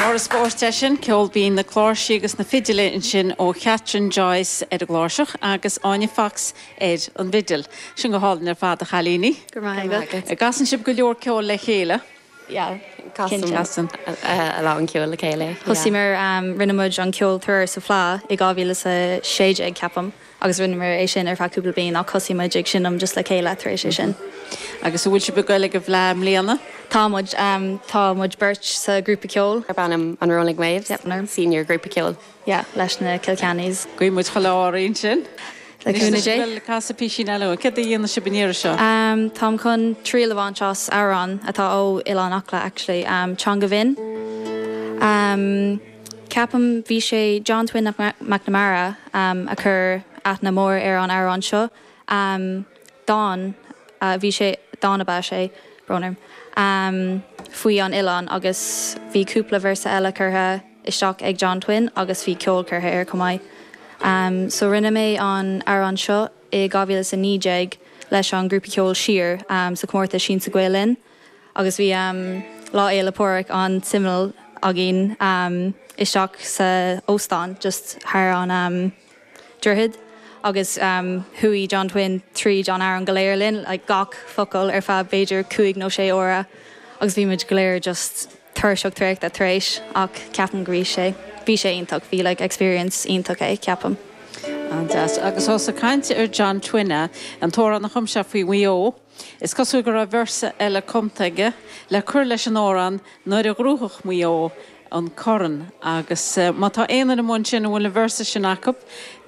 Mo rós, spórt é sin, ceol binn na cláirsí agus na fidile ansin ó Chatherine Joyce ar an gcláirseach agus Áine Fox ar an bhfidil. Bhí sin go hálainn ar fad a chailíní. Go raibh maith agat. Casann sibh go leor ceoil le chéile. yeah casann casann a lán ceoil le chéile yeah. Thosaigh muid rinne muid an ceol tuairim sa Fleá i 2016 ceapaim agus rinne muid é sin ar feadh cúpla bliain ach thosaigh muid ag seinm just le chéile tar éis é sin. Agus an bhfuil sibh ag goil ag an bhFleá i mbliana? Tá muid, tá muid beirt sa ghrúpa ceoil darb ainm An Rolling Waves, yep, senior grúpa ceoil. yeah leis na Kilkeannys. Guíonn muid chuile ádh oraibh ansin. Le cúnamh Dé. Bhuel, casaigí píosa eile dúinn. Céard a dhéanfaidh sibh an iarraidh seo? Táim chun triail a bhaint as amhrán atá ó Oileán Acla actually, Teanga Bhinn. Ceapaim bhí sé John Twin McNamara a chuir aithne mhór ar an amhrán seo. Dán a bhí sé, dán ab ea sé, brón orm, faoi an oileán agus bhí cúpla véarsa eile curtha. isteach ag John Twin agus bhí ceol curtha air chomh maith. So rinne mé an amhrán seo i 2019 leis an ghrúpa ceoil Siar sa chomórtas Siansa Gael Linn agus bhí Lá Fhéile Pádraig an-suimiúil againn isteach sa óstán just thar an. droichead agus chuaigh John Twin tríd an amhrán go léir linn, like gach focal ar feadh b'fhéidir cúig nó sé uaire agus bhí muid go léir just tuirseach traochta tar éis ach ceapaim go raibh sé, bhí sé iontach, bhí like experience iontach é, ceapaim. An-deas. Agus tá tú ag caint ar John Twin, an t-amhrán a chum sé faoi Mhaigh Eo, Is cosúil go raibh véarsa eile cumtha aige le cur leis an amhrán nuair a ghnóthódh Maigh Eo an corn agus má tá aon duine amuigh ansin a bhfuil an véarsa sin acu,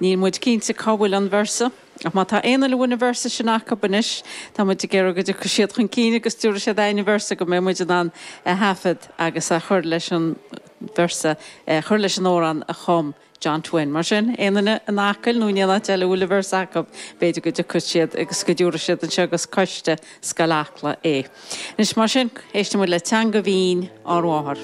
níl muid cinnte cá bhfuil an véarsa, ach má tá aon duine a bhfuil an véarsa sin acu anois, tá muid ag iarraidh go dtiocfaidh siad chun cinn agus go dtabharfaidh siad dúinn an véarsa go mbeidh muid in ann a thaifead agus a chur leis an véarsa, chur leis an amhrán a chum. John Twin, Mar sin, aon duine in Acaill nó in aon áit eile a bhfuil an véarsa acu, b'fhéidir go dtiocfadh siad agus go dtabharfadh siad anseo go coiste Scoil Acla é. Anois, mar sin, éistimid le Teanga Bhinn ár Mháthar.